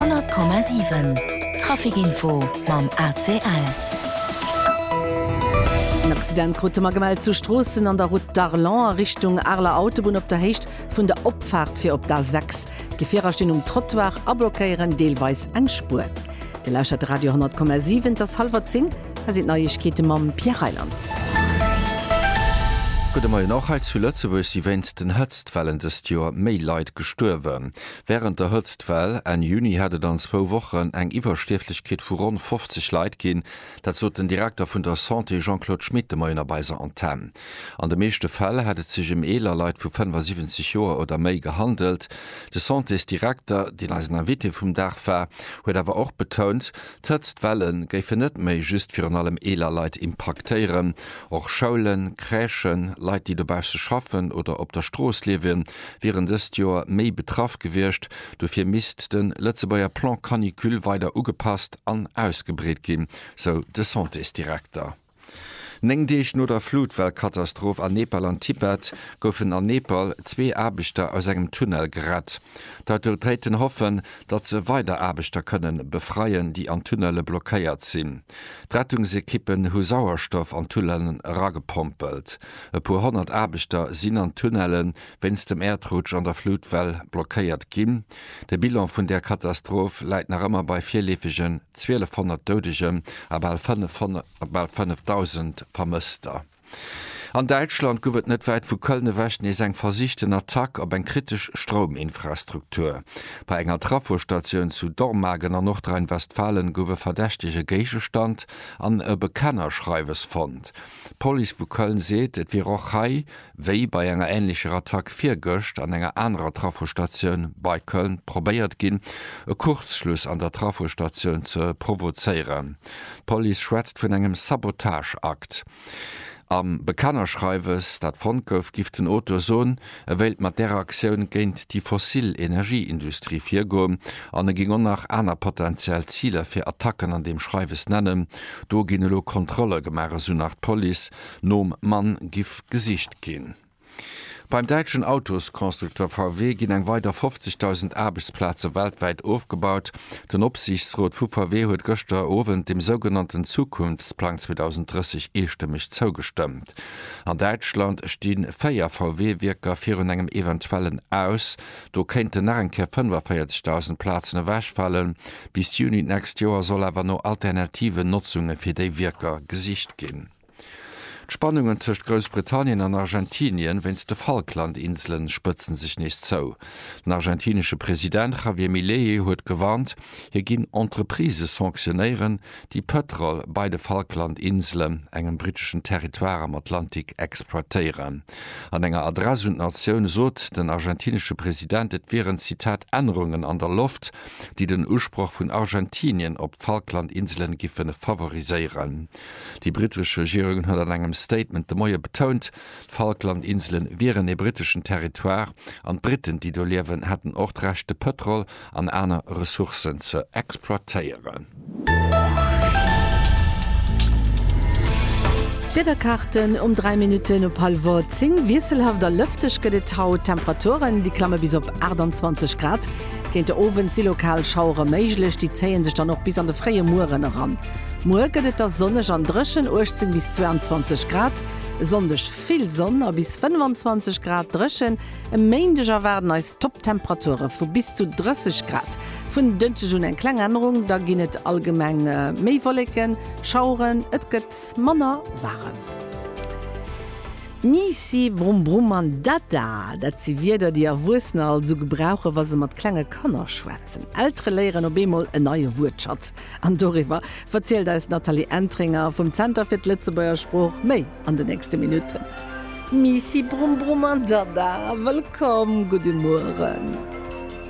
100,7 Traficinfo mam ACL. En Accident krute mer gemellt zu Stroossen an der Route d'Arlon a Richtung Areler Autobunn op der Héicht vun der Opfaart fir op d'A6. Gefierer stinn um Trottoir a blockéieren deelweis eng Spuer. Dir lauschtert de Radio 10,7, et ass hallwer 10, hei sinn d'Neiegkeete mam Pierre Reyland. Gudde Moien, Och hei zu Lëtzebuerg si wéinst den Hëtztwellen dëst Joer méi Leit gestuerwen. Wärend der Hëtztwell Enn Juni hätt et an zwou Wochen eng Iwwerstierflechkeet vu ronn 50 Leit ginn. Dat sot den Direkter vun der Santé Jean-Claude Schmit de Moien op eiser Antenn. An de meeschte Fäll hätt et sech ëm eeler Leit vu 75 Joer oder méi gehandelt. De Santésdirekter, deen eisen Invité vum Dag war, huet awer och betount, d'Hëtztwelle géifen net méi just virun allem eeler Leit impaktéieren. Och Schoulen, Crèchen, Leit, déi dobausse schaffen oder op der Strooss liewen, wieren dëst Joer méi betraff gewiescht. Dofir misst de Lëtzebuerger Plan Canicule weider ugepasst an ausgebreet ginn, sou de Santésdirekter. Néng Deeg no der Flutwell-Katastroph an Nepal an Tibet goufen an Nepal zwee Aarbechter aus engem Tunnel gerett. D'Autoritéiten hoffen, datt se weider Aarbechter kënnen befreien, déi an Tunnele blockéiert sinn. D'Rettungsekippen hu Sauerstoff an d'Tunnelen eragepompelt. E puer honnert Aarbechter sinn an Tunnelen, wéinst dem Äerdrutsch an der Flutwell blockéiert ginn. De Bilan vun där Katastroph läit nach ëmmer bei virleefegen 1.200 Doudegen a bal 5.000 Vermësster. An Däitschland gouf et net wäit vu Köln ewech nees eng versichten Attack op eng kritesch Strouminfrastruktur. Bei enger Trafostatioun zu Dormagen an Nordrhein-Westfalen gouf e verdächtege Géigestand an e Bekennerschreiwes fonnt. D'Police vu Köln seet, et wier och hei Wéi bei enger änlecher Attack virgëscht an enger anerer Trafostatioun bei Köln probéiert ginn, e Kurzschluss an der Trafostatioun ze provozéieren. D'Police schwätzt vun engem Sabotageakt. Am Bekennerschreiwes, dat fonnt gouf, giff den Auteur soen, e wéilt mat där Aktioun géint déi fossil Energieindustrie virgoen an e géing och nach aner potentiell Ziler fir Attacken an deem Schreiwes nennen. Do ginn elo Kontrolle gemaach, esou nach d'Police. Nom Mann giff gesicht ginn. Beim däitschen Autosconstructeur VW ginn eng weider 50.000 Aarbechtsplaze weltwäit ofgebaut. Den Opsiichtsrot vu VW huet gëschter Owend dem sougenannten Zukunftsplang 2030 eestëmmeg zougestëmmt. An Däitschland sti véier VW-Wierker virun engem eventuellen Aus. Do kéinten nach eng Kéier 45.000 Plazen ewechfalen. Bis Juni d'nächst Joer soll awer no alternativen Notzunge fir déi Wierker gesicht ginn. D'Spannungen tëscht Groussbritannien an Argentinien wéinst de Falklandinselen spëtzen sech nees zou. Den argentinesche President Javier Milei huet gewarnt, hie ginn Entreprisë sanctionéieren, déi Pëtrol bei de Falklandinselen, engem britteschen Territoire am Atlantik, exploitéieren. An enger Adress un d'Natioun sot den argentinesche President, et wieren Zitat Ännerungen an der Loft, déi den Usproch vun Argentinien op d'Falklandinselen giffen favoriséieren. Déi brittesch Regierung huet an engem Statement de Moie betount, d'Falkland-Insele wieren ee britteschen Territoire an d'Britten, déi do liewen, hätten och d'Recht de Pëtrol an aner Ressourcen ze exploitéieren. D'Wiederkaarten um 3 Minutten op hallwer 10, Wiesselhaft a lëfteg gëtt et haut. D'Temperaturen, déi klamme bis op 28 Grad. Géint de Owend si lokal Schauere méiglech, déi zéie sech dann och bis an de fréie Mueren eran. Muer gëtt et da sonneg an dréchen, 18 bis 22 Grad. E Sonndeg vill Sonn a bis 25 Grad dréchen. E Méindeg erwaarden eis Topptemperature vu bis zu 30 Grad. Vun Dënschdeg un eng kleng Ännerung, da ginn et allgemeng méi Wolleken, Schaueren, et gëtt manner waarem. Miissi, Brumm Brumm an Dada, dat si Wierder, déi Erwuessener alt esou gebrauchen, wa se mat klenge Kanner schwätzen. Eltere léieren op eemol en neie Wuertschatz. An doriwwer verzielt eis d'Nathalie Entringer vum Zenter fir d'Lëtzebuerger Sprooch méi an den nächste Minutten. Miissi Brumm Brumm an Dada, wëllkomm, gudde Mueren.